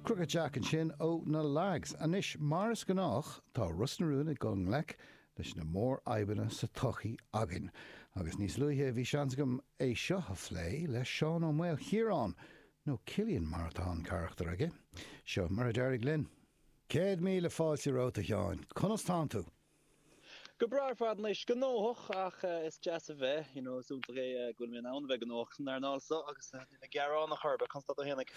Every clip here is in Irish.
Crooked Jack ansin ó na Lags. Anois, mar is gnách, tá Ros na Rún ag dul i ngleic leis na mórfhadhbanna sa tsochaí againn, agus níos luaithe bhí seans agam é seo a phlé le Seán Ó Maolchiaráin, nó Cillian mar atá an carachtar aige. Seo mar a d'éirigh linn. Céad míle fáilte romhat, a Sheáin. Conas tánn tú? Go breá ar fad anois. Gnóthach ach is deas a bheith, you know, is iontach é go bhfuil mé in ann a bheith gnóthach san earnáil so agus nílim ag gearán in aon chor. Conas tánn tú féinig?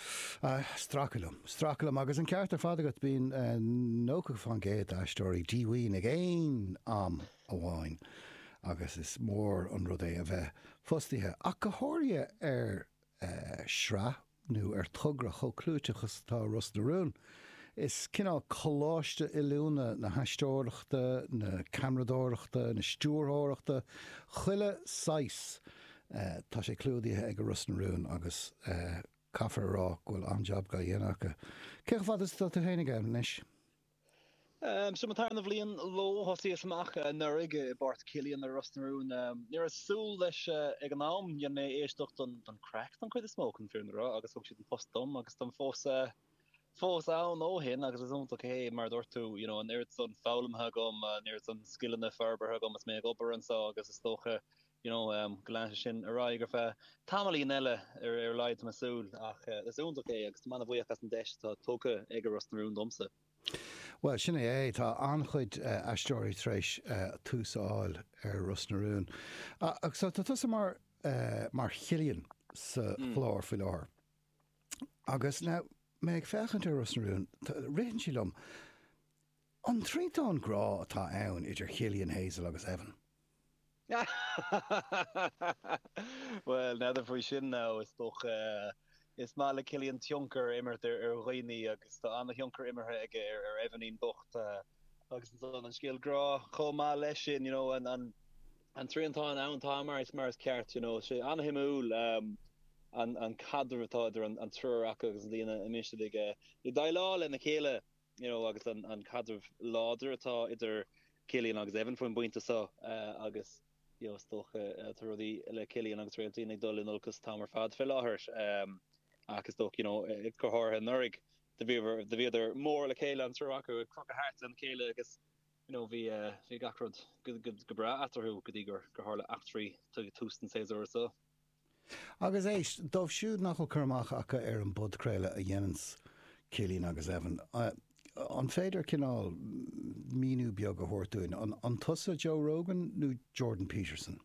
Stracadh liom. Stracadh liom agus an ceart ar fad agat, bíonn 90% d'aisteoirí díomhaoin ag aon am amháin agus is mór an rud é a bheith fostaithe ach go háirithe ar shraith nó ar thogra chomh clúiteach is atá Ros na Rún. Is cineál coláiste oiliúna na haisteoireachta, na ceamaradóireachta, na stiúrthóireachta, chuile shaghas tá sé clúdaithe ag Ros na Rún agus caithfear a rá go bhfuil an-jab á dhéanamh acu. Cé chomh fada is atá tú féinig ann anois? Seo mo tarna bhliain leo. Thosaíos amach anuraidh i bpáirt Chillian ar Ros na Rún. Ní raibh súil leis ag an am, dhein mé éisteacht don gcraic don chuid is mó chun fírinne a rá agus thug siad an post dom agus táim fós fós ann ó shin agus is iontach é mar a dúirt tú you know an oiread san foghlamtha agam, an oiread san scileanna forbartha agam is mé ag obair anseo agus is dócha you know, go leanfaidh sé sin ar aghaidh ar feadh tamaillín eile ar a laghad tá mé ag súil, ach is iontach é agus tá mé an-bhuíoch as an deis atá tugtha ag Ros na Rún domsa. Bhuel, sin é é. Tá an-chuid aisteoirí tar éis tús a fháil ar Ros na Rún. Ach so, tá tusa mar, mar Chillian sa chlár faoi láthair. Agus now, mé ag féachaint ar Ros na Rún, ritheann sé liom. An triantán grá atá ann idir Chillian, Hazel agus Evan. Bhuel, n'fheadar faoi sin nó is dócha. Is maith le Cillian tionchar a imirt ar dhaoine agus tá an-thionchar imeartha aige ar Evanín bocht agus ansan. An scéal grá chomh maith leis sin, you know, an triantán ann, tá mar is ceart, you know. tá sé an-shuimiúil an caidreamh atá idir an triúr acu agus na dinimicí atá acu ag déileáil lena chéile. you know, agus an caidreamh láidir atá idir Cillian agus Evan faoin bpointe so, agus you know, is dócha tá rudaí le Cillian agus Réailtín ag dul in olcas amach ar fad fé láthair, ach is dócha you know, go háirithe anuraidh do bhíodar mór le chéile an triúr acu ag crochadh thart lena chéile agus you know, bhí bhí gach rud go go go breá eatarthu go dtí gur gur tharla eachtraí ag tús an tséasúra so. Agus éist, dóibh siúd nach bhfuil cur amach acu ar an bpodchraoladh a dhéanann Cillian agus Evan, an féidir cineál míniú beag a thabhairt dúinn, an tusa Joe Rogan nó Jordan Peterson?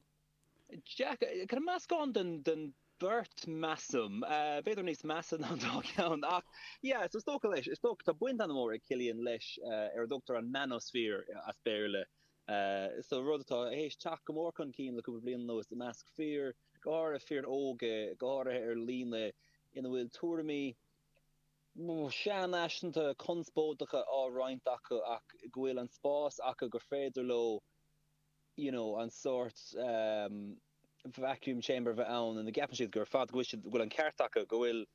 Yeah, kind of meascán den beirt measaim, b'fhéidir níos measa ná an dá ceann ach yeah, so is dócha leis, is dócha, tá baint ana-mhór ag Cillian leis ar a dtugtar an manosphere as Béarla, Is rud atá théis teacht go mór chun cinn le cúpla bliain anuas i measc fir, go háirithe fir óga, go háirithe ar líne, ina bhfuil tuairimí sean-fhaiseanta, conspóideacha á roinnt acu ach go bhfuil an spás acu gur féidir leo you know an sórt vacuum chamber bheith ann ina gceapann siad gur fad, go bhfuil siad, go bhfuil an ceart acu, go bhfuil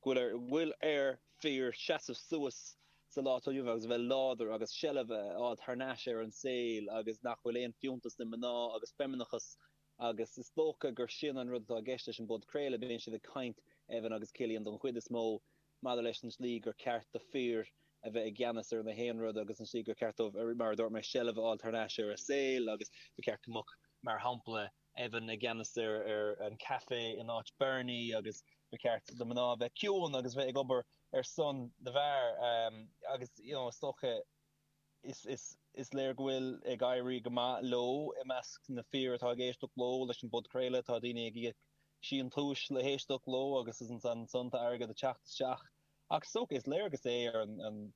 go bhfuil ar fir seasamh suas sa lá atá inniu agus a bheith láidir agus seilbh a fháil thar n-ais ar an saol agus nach bhfuil aon fiúntas le mná agus feimineachas agus is dócha gur sin an rud atá i gceist leis an bpodchraoladh, bíonn siad ag caint, Evan agus Cillian don chuid is mó, maidir leis an tslí gur ceart do fir a bheith i gceannas ar na haon rud agus an slí gur ceart dóibh, mar a dúirt mé, seilbh a fháil thar n-ais ar a saol agus ba cheart go mbeadh, mar shampla, Evan i gceannas ar an caife in áit Bernie agus ba cheart do mná bheith ciúin agus bheith ag obair ar son na bhfear agus you know is dócha is léir go bhfuil ag éirí go maith leo i measc na fir atá ag éisteacht leo leis an bpodchraoladh tá daoine ag íoc síntiús le héisteacht leo agus is ansan tá airgead ag teacht isteach Ach is dócha, is léargas é ar an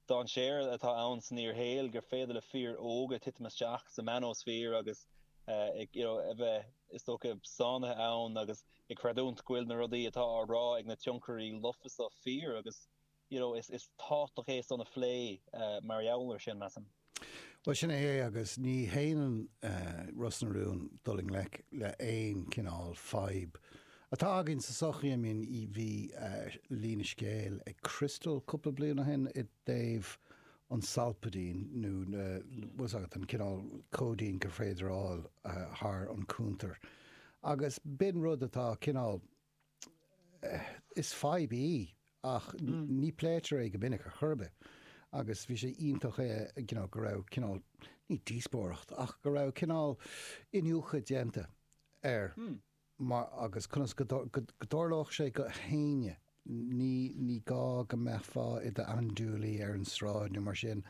dainséar atá ann san fhíorshaol gur féidir le fir óga titim isteach sa manosphere agus a bheith, is dócha, sáinnithe ann agus ag creidiúnt go bhfuil na rudaí atá á rá ag na tionchairí lofa seo fíor agus you know is tábhachtach é san a phlé mar gheall ar sin, measaim. Bhuel, sin é é agus ní shéanann Ros na Rún dul i ngleic le haon chineál fadhb atá againn sa sochaí. I mean, bhí líne scéil ag Crystal cúpla bliain ó shin i dtaobh an Solpadeine nó bhfuil 's agat, an cineál cóidín gur féidir a fháil thar an cúntar agus b'in rud atá cineál, Is fadhb í ach ní pléitear é go minic ar chor ar bith agus bhí sé iontach you know go raibh cineál, ní díospóireacht ach go raibh cineál iniúchadh déanta air mar agus conas go dtarlódh sé do éinne, ní ní gá go mbeifeá i d'andúilaí ar an sráid nó mar sin,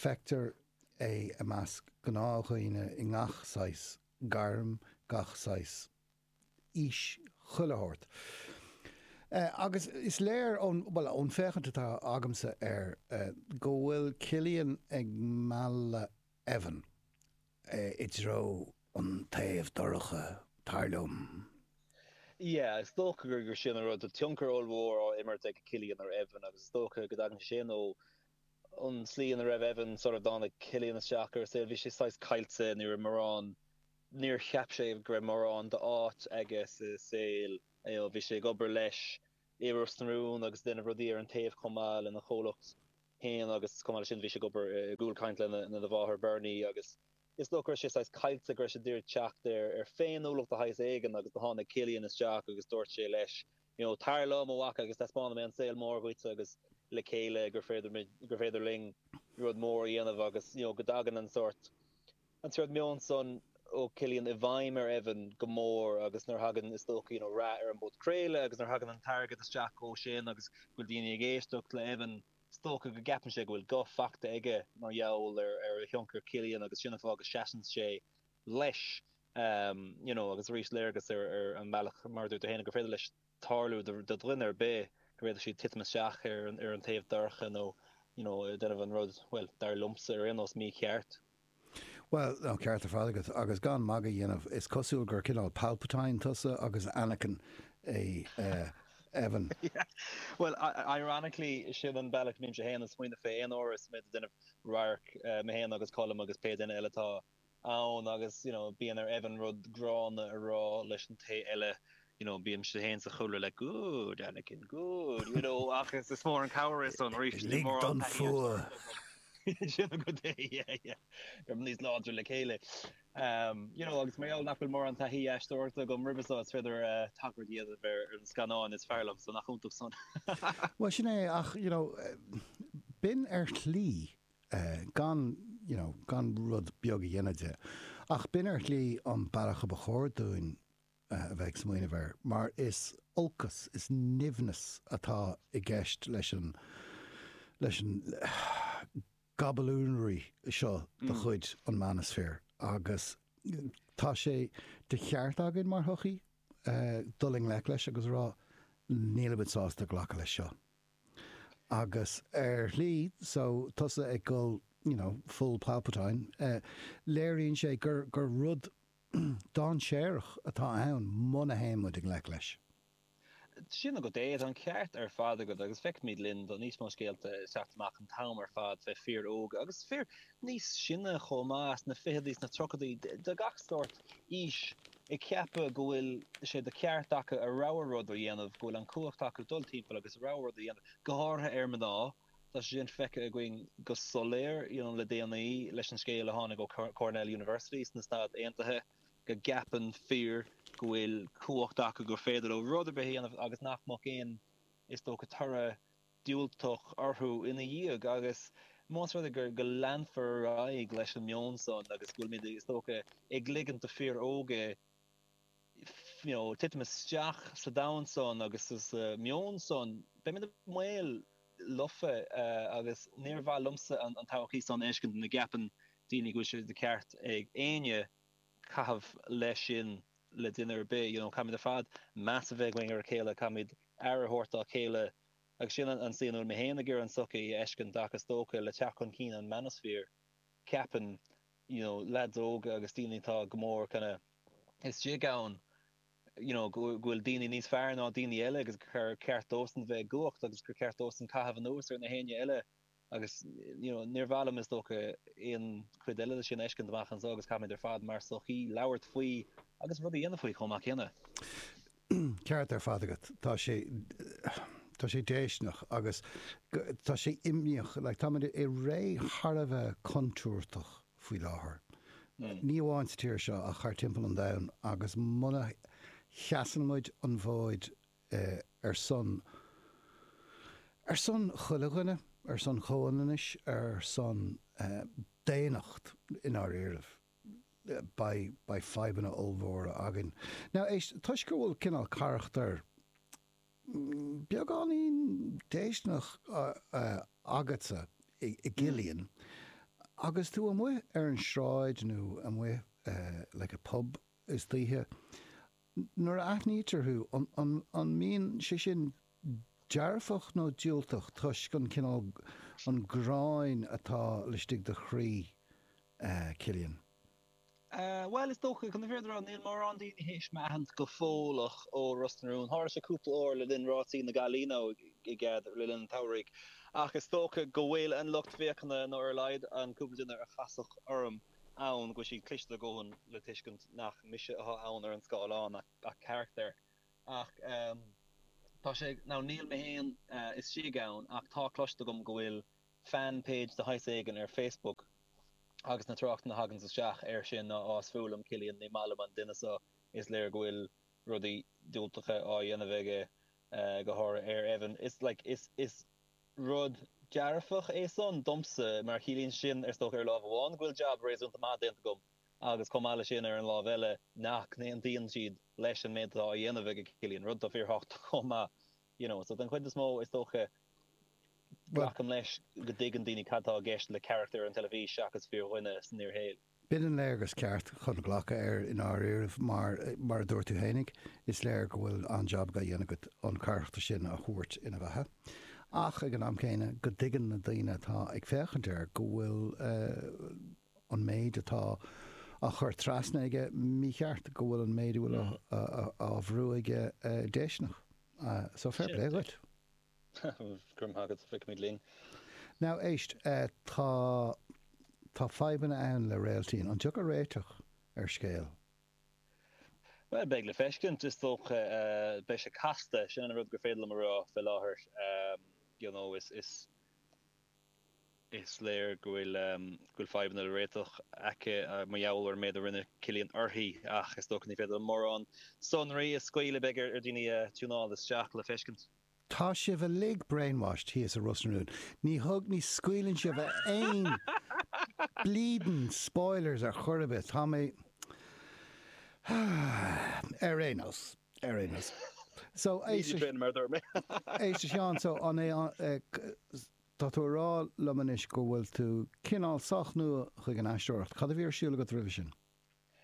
feictear é i measc gnáthdhaoine i ngach saghas gairm, gach saghas. aois chuile shórt. Agus is léir ón, bhuel, ón féachaint atá agamsa air go bhfuil Cillian ag mealladh Evan i dtreo an taobh dorcha, tar liom. Yeah, is dócha gur sin an rud. Tá tionchar ollmhór á imirt ag Cillian ar Evan agus is dócha go dtagann sé sin ó an tslí ina raibh Evan, sara dtáinig Cillian isteach ar a saol, bhí sé saghas caillte, ní raibh mórán, Níor cheap sé go raibh mórán d'áit aige sa saol. Bhí sé ag obair leis i Ros na Rún agus ag déanamh rudaí ar an taobh chomh maith lena chomhlacht féin agus chomh maith le sin bhí sé ag obair i gCúl Caint lena mháthair Berni agus is dócha go raibh sé saghas caillte go raibh sé d'iarraidh teacht ar ar féiniúlacht de shaghas éigean agus do tháinig Cillian isteach agus dúirt sé leis you know tar liom a mhac agus taispeánfaidh mé an saol mór dhuit agus le chéile gur féidir muid gur féidir linn rud mór a dhéanamh agus you know go dtagann an sórt An sórt meon san ó Cillian i bhfeidhm ar Evan go mór agus nuair thagann, is dócha rath ar an bpodchraoladh agus nuair thagann an t-airgead isteach ó sin agus go bhfuil daoine ag éisteacht le Evan, is dócha go gceapann sé go bhfuil guth fachta aige mar gheall ar ar thionchar Cillian agus sin an fáth go seasann sé leis you know agus arís léargas ar ar an mbealach mar a dúirt tú féin gur féidir leis tarlú do do dhuine ar bith gur féidir siad titim isteach ar ar an taobh dorcha nó you know déanamh an rud bhuel dar liomsa ar aon nós mícheart. Bhuel, tá an ceart ar fad agat, agus gan magadh a dhéanamh, is cosúil gur cineál Palpatine tusa agus Anakin é Evan. Bhuel, ironically, sin an bealach a mbímse féin ag smaoineamh fé aon uair is mé ag déanamh radhairc, mé féin agus Colm agus pé duine eile atá ann, agus, you know, bíonn ar Evan rud gránna a rá leis an té eile you know, bímse fhéin sa chúlra le good, Anakin, good, you know, ach is is mór an cabhair é san arís, bhí Lig mórán don taithí ag fuath. Lig sin agat é, yeah, yeah, beimid níos láidre le chéile. Ehm, you know, agus mar gheall nach bhfuil mórán taithí aisteoireachta agam roimhe seo is féidir tagairt a dhéanamh ar an scannán is fearr liom, so nach iontach san. Bhuel sin é, ach, you know, b'in ar shlí, eh, gan, you know, gan rud beag a dhéanamh de, ach b'in ar shlí an bealach a ba chóir dúinn a bheith ag smaoineamh air, mar is olcas, is nimhneas atá i gceist leis an, leis an gaballonraí seo de chuid an manosphere agus tá sé de cheart againn mar shochaí dul i ngleic leis agus a rá nílimid sásta glacadh leis seo. Agus ar shlí, so tusa ag dul, you know, full Palpatine, léiríonn sé gur, gur rud, Dáinséarach atá ann muna théann muid i ngleic leis. Sin agat é. Tá an ceart ar fad agat agus feicimid, you know, níos mó scéalta ag teacht amach an t-am ar fad fé fhir óga, agus fir níos sine chomh maith, sna ficheadaí, sna tríochadaí, de gach sórt aois, ag ceapadh go bhfuil sé de ceart acu a rogha rud a dhéanamh, go bhfuil an cumhacht acu dul timpeall agus a rogha rud a dhéanamh, go háirithe ar mná. Tá sé sin feicthe againn go soiléir le déanaí leis an scéal a tháinig ó Cornell University sna Stáit Aontaithe go gceapann fir go bhfuil cumhacht acu gur féidir leo rud ar bith a dhéanamh agus nach mbeadh aon is dócha toradh diúltach orthu ina dhiaidh agus más rud é gur go leanfar ar aghaidh leis an meon san agus go bhfuilmid is dócha ag ligint do fhir óga titim isteach sa domhan san agus sa meon san. Beimid i mbaol lofa agus níor mhaith liomsa an todhchaí san a fheiscint ina gceapann daoine go bhfuil sé de cheart ag éinne caitheamh mar sin le duine ar bith, you know. Caithfimid ar fad meas a bheith againn ar a chéile, caithfimid aire a thabhairt dá chéile agus sin an slí go bhfuil mé féin ag iarraidh an tsochaí a fheiscint ach is dócha le teacht chun cinn an manosphere ceapaim you know lads óga agus daoine atá go mór kinda istigh ann you know go bhfuil daoine níos fearr ná daoine eile agus gur ceart dóibhsan bheith i gcumhacht agus gur ceart dóibhsan caitheamh anuas ar nach éinne eile agus you know níor mhaith liom is dócha aon chuid eile de sin a fheiscint amach anso agus caithfimid ar fad mar sochaí labhairt faoi agus rud a dhéanamh faoi chomh maith céanna. Ceart ar fad agat. Tá sé, tá sé déistineach agus tá sé imníoch. Like, tá muid i ré thar a bheith contúirteach faoi láthair. Ní amháin sa tír seo ach thar timpeall an domhain agus muna sheasann muid an bhfóid ar son, ar son chuile dhuine, ar son comhionannais, ar son daonnacht i ndáiríribh. beidh fadhbanna ollmhóra againn. Now, éist, toisc go bhfuil cineál carachtar beagáinín déistineach agatsa i gCillian, agus tú amuigh ar an sráid nó amuigh like i bpub istoíche, Nuair a aithnítear thú, an mbíonn sé sin dearfach nó diúltach toisc an cineál, an ghráin atá laistigh de chroí Cillian? Bhuel, is dócha, chun na fírinne a rá, níl mórán daoine théis mé a aithint go fóilleach ó Ros na Rún. Tharla sé cúpla uair le linn Rásaí na Gaillimhe, ok, le linn an tsamhraidh. Ach is dócha go bhfuil an lucht féachana, nó ar a laghad an cúpla duine a casadh orm, ann go bhfuil siad cliste a dhóthain le tuiscint nach mise atá ann ar an scáileán ach carachtar. Ach tá sé nó níl mé féin istigh ann ach tá cloiste agam go bhfuil fan page de shaghas éigin ar Facebook agus na tráchtanna a thagann isteach air sin ná is fuath liom Cillian ní maith liom an duine seo is léir go bhfuil rudaí diúltacha á dhéanamh aige go háirithe ar Evan is like is Rud dearfach é san domsa mar chiallaíonn sin, is dócha, ar láimh amháin, go bhfuil jab réasúnta maith déanta agam agus chomh maith leis sin ar an láimh eile nach n-aontaíonn siad leis an méid atá á dhéanamh ag a Cillian, rud atá fíorthábhachtach chomh maith. You know, so den chuid is mó is dócha glacaim leis go dtuigeann daoine cad tá i gceist le carachtar ar an teilifís seachas fíordhuine san fhíorshaol. B'in an léargas ceart chun glacadh air i ndáiríribh mar, mar a dúirt tú fhéinig, is léir go bhfuil an-jab á dhéanamh agat an carachtar sin a thabhairt ina bheatha ach ag an am céanna go dtuigeann na daoine atá ag féachaint air go bhfuil an méid atá á chur trasna aige mícheart, go bhfuil an méid a bhfuil á bhrú aige déisteanach. So, fair play dhuit. Grma agat, feicfimid linn. Now éist, tá, tá fadhbanna ann le Réailtín. An dtiocfadh réiteach ar scéal? Bhuel, beidh le feiscint, is dócha. Beidh sé casta, sin an rud gur féidir liom a rá fé láthair. You know, is, is, is léir go bhfuil, go bhfuil fadhbanna le réiteach aice mar gheall ar an méid a rinne Cillian uirthi ach is dócha ní féidir liom mórán sonraí a scaoileadh, beidh ar dhaoine tiúnáil isteach le feiscint. Tá sibh uilig brainwashed, thíos i Ros na Rún. Ní thug, ní scaoileann sibh aon bleedin spoilers ar chor ar bith. Tá mé ar aon nós, ar aon nós. So, Ní de Bréan mar a dúirt mé. Aodh de Sheán, so an é, tá tú ag rá liom anois go bhfuil tú cineál sách nua chuig an aisteoireacht. Cad a bhí ar siúl agat roimhe sin?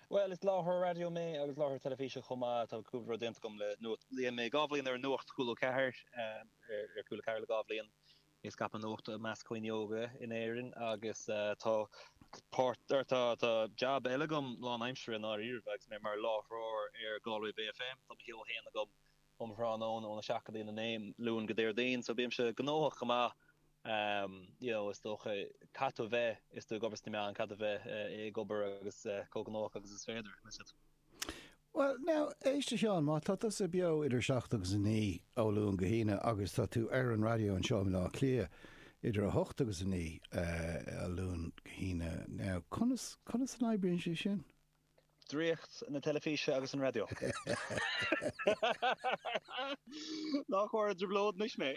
Bhuel, is láithreoir raidió mé agus láithreoir teilifíse chomh maith. Tá cúpla rud déanta agam le Nuacht. Rinne mé dhá bhliain ar Nuacht Cúla 4, ar Cúla 4 le dhá bhliain, ag scaipeadh nuachta i measc daoine óga in Éirinn agus tá páirt, tá jab eile agam lán aimsire i ndáiríribh agus mé mar láithreoir ar Galway Bay FM. Tá mo sheó féin agam um tráthnóna óna seacht go dtí an 9 Luan go Déardaoin so bímse gnóthach go maith you know is dócha caithfidh tú a bheith is tú ag obair sna meáin caithfidh tú a bheith eh ag obair agus eh chomh gnóthach agus is féidir miss it. Bhuel now éist a Sheáin má tá tusa beo idir 7 agus 9 ó Luan go hAoine agus tá tú ar an raidió anseo i mBaile Átha Cliath idir 8 agus 9 eh, ó Luan go hAoine now conas conas an oibríonn sé sin? Draíocht na teilifíse agus an raidió. Nach mór an dtrioblóid anois mé.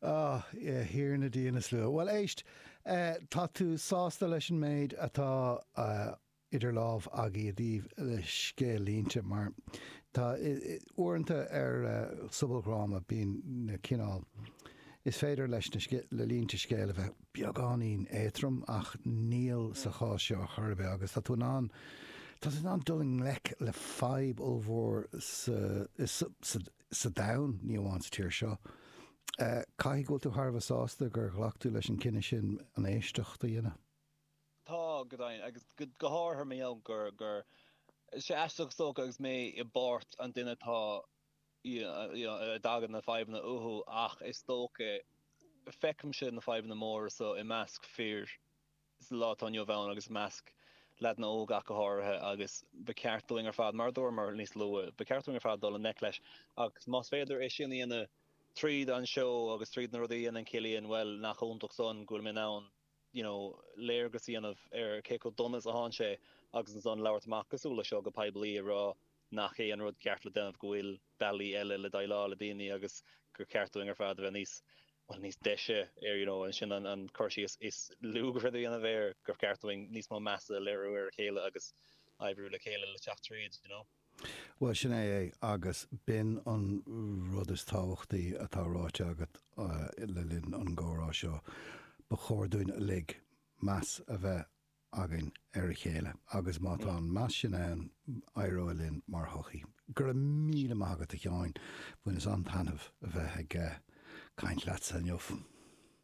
A Thiarna Dia na slua. Bhuel éist, tá tú sásta leis an méid atá idir lámha agat i dtaobh le scéal-línte mar tá uaireanta ar sobaldhráma bíonn na cineál Is féidir leis na línte scéil a bheith beagáinín éatrom ach níl sa chás seo chor ar bith agus tá tú in ann tá tú in ann dul i ngleic le fadhb ollmhór sa domhan, ní amháin sa tír seo. Caithfidh go bhfuil tú thar a bheith sásta gur ghlac tú leis an cinneadh sin an éisteacht a dhéanamh? Tá, go dtí, agus go háirithe ar mo thaobh, go bhfuil sé aisteach is dócha agus mé i bpáirt an duine atá, you know, a dtagann na fadhbanna uathu ach is dócha, feicimse na fadhbanna móra so i measc fir sa lá atá inniu ann agus i measc leaideanna óga ach go háirithe agus ba cheart dúinn ar fad, mar a dúramar níos luaithe, ba cheart dúinn ar fad dul i ngleic leis agus más féidir é sin a dhéanamh tríd an seó agus tríd na rudaí a dhéanann Cillian, bhuel, nach iontach san go bhfuil mé in ann. you know, léargas a dhéanamh ar cé chomh dona is a théann sé agus ansan labhairt amach cosúil le seo go poiblí ag rá nach é an rud ceart le déanamh go bhfuil bealaí eile le déileáil le daoine agus gur cheart dúinn ar fad a bheith níos, well, níos deise, you know, sin an cur síos is lú gur féidir a dhéanamh air gur cheart dúinn níos mó measa a léiriú ar a chéile agus oibriú le chéile le teacht tríd, you know. Bhuel, sin é é, agus b'in an rud is tábhachtaí atá ráite agat le linn an gcomhrá seo. Ba chóir dúinn uilig meas a bheith againn ar a chéile, agus má tá an meas sin ann, éireoidh linn mar shochaí. Go raibh míle maith agat, a Sheáin, bhaineas an-taitneamh a bheith ag caint leatsa inniu.